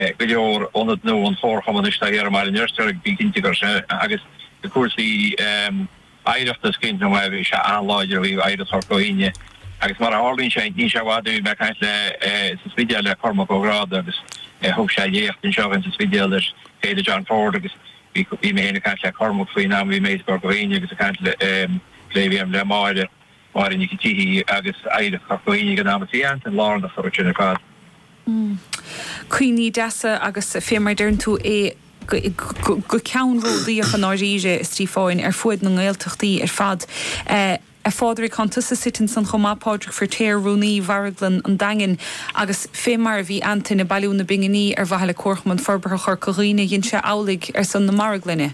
go leor ionad nua an Chomharchumainn istigh i mBaile an Fheirtéaraigh bí cinnte gur sé agus i gcúrsaí oidhreachta is cinnte go maith bhí sé an-láidir i dtaobh oidhreacht Chorca Dhuibhne agus mar a tharlaíonn sé níl sé i bhfad ó bhí mé ag caint le sa Spidéal le Cormac Ó Gráda agus thug sé léacht anseo againn sa Spidéal ar Fhéile John Ford agus bhí bhí mé féin ag caint le Cormac faoin am a bhí mé i Corca Dhuibhne agus ag caint le plé a bhí agam le Máire Máire Nic a' tSíthigh agus Oidhreacht Chorca Dhuibhne ag an am, bhí Antain lárnach sa rud sin ar fad. Mmm. Cuimhní deasa agus fé mar a deireann tú é go ceannródaíoch i ndáiríre, is trí fáin ar fuaid na nGaeltachtaí ar fad. A Phádraig, tánn tusa suite ansan chomh maith, Pádraig Firtéar, Rúnaí Mharglann an Daingin, agus fé mar a bhí Antain ag bailiú na bpinginí ar mhaithe le Comharchumann Forbartha Chorca Dhuibhne, dhein sé amhlaidh ar son na Marglainne.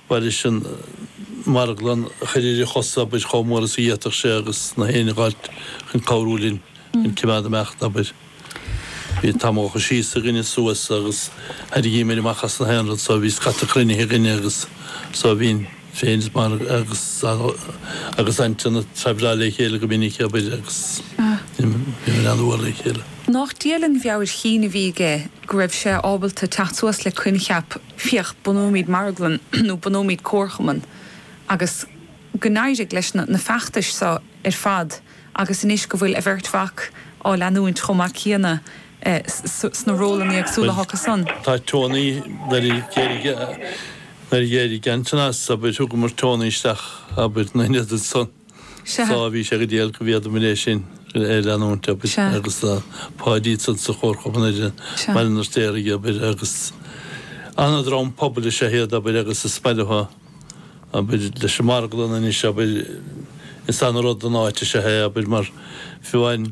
Mar is an marglann a chur ar a chosa, abair, chomh mór is a d'fhéadfadh sé agus gach éinne a dh'fháilt chun cabhrú linn chun cimeád amach, abair. Bhí tamall síos againn is suas agus thairrigímid amach as gach aon rud so bhí scata cruinnithe againne agus so bhínn féin is Margaret agus Antain a' traibhleáil le chéile go minic, abair, agus bhíomar an-mhór le chéile. Nách diail an mheabhair chinn a bhí aige go raibh sé ábalta teacht suas le coincheap féach, bunóimid marglann nó bunóimid comharchumann agus go n-éirigh leis na feachtais seo ar fad agus anois go bhfuil a bheirt mhac á leanúint chomh maith céanna sna rólanna éagsúla acu san. Bhuel, tá Tony, nuair a d'éirigh, nuair a d'éirigh Antain as, abair, thugamar Tony isteach, abair, ina ionad ansan. Sea. Sea, bhí sé go diail go bhféadamair é sin a leanúint, abair. Sea. Agus tá Páidí ansan sa Chomharchumann anois, Sea. i mBaile an Fheirtéaraigh, abair, agus ana-dhream pobail is ea iad, abair, agus is maith leo, abair, leis an marglann anois, abair, is ana-rud don áit is ea é, abair, mar fiú amháin,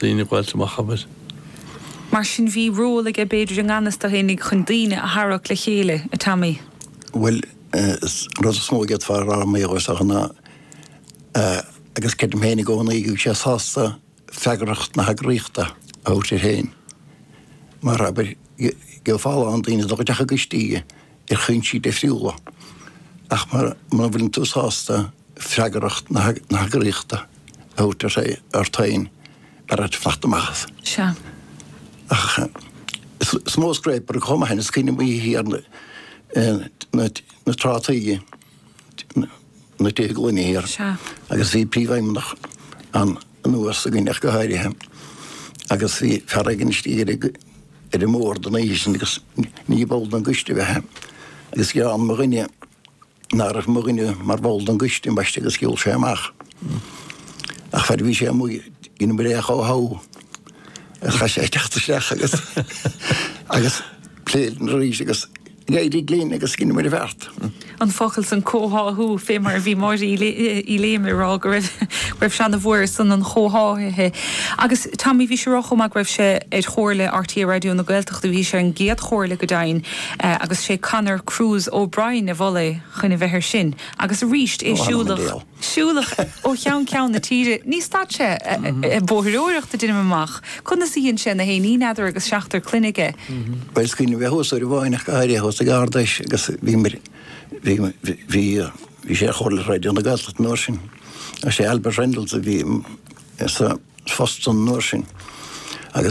daoine ag fáilt amach, abair. Mar sin bhí ról aige b'fhéidir i nganfhios dó fhéinig chun daoine a tharrac le chéile, a Tommy. Bhuel, an rud is mó a d'fhéadfá a rá mar gheall air, is dócha, ná eh, agus creidim féin i gcónaí go bhfuil sé sásta freagracht na heagraíochta a thabhairt air féin, mar, abair, gheofá a lán daoine a thoghadh isteach i gcoistí, ar chúinsí difriúla, ach mura bhfuileann tú sásta freagracht na heagraíochta a thabhairt ort féin, b'fhearra dhuit fanacht amach as. Ach is mó scréipire chomh maith, is cuimhin liom oíche thiar na trátaí, na tithe gloine thiar agus bhí príomhfheidhmeannach an Údaráis againn ach go háirithe agus bhí fear éigin istigh ar ar an mbord an oíche sin agus ní ball den gcoiste a bhí ann agus ghearán mo dhuine ná raibh mo dhuine mar bhall den gcoiste ambaiste agus gheall sé amach. Ach fear a bhí sé amuigh ina mbré chomh how a chaith sé ag teacht isteach agus agus plé linn arís agus D'éirigh linn agus dheineamar an bheart. an focal san comhtháthú fé mar a bhí Máire Uí Léime ag rá go raibh go raibh sé ana mhór ar son an chomhtháthaithe agus Tommy bhí sé ag rá chomh maith go raibh sé ar chomhairle RTÉ Raidió na Gaeltachta bhí sé ar an gcéad chomhairle go deimhin agus sé Conor Cruise O'Brien a mhol é chun a bheith ar sin agus arís é siúlach siúlach ó cheann ceann na tíre. Ní stad sé ag bóithreoireacht a deinim amach. Conas a dhein sé na haon ní n'fheadar agus seachtar clainne aige? Bhuel, is cuimhin liom bheith thuas uair amháin ach go háirithe thuas ag Ard Fheis agus bhíomar, bhí, bhí, bhí sé ar Chomhairle Raidió na Gaeltachta an uair sin. Sé Albert Reynolds a bhí sa phost san an uair sin.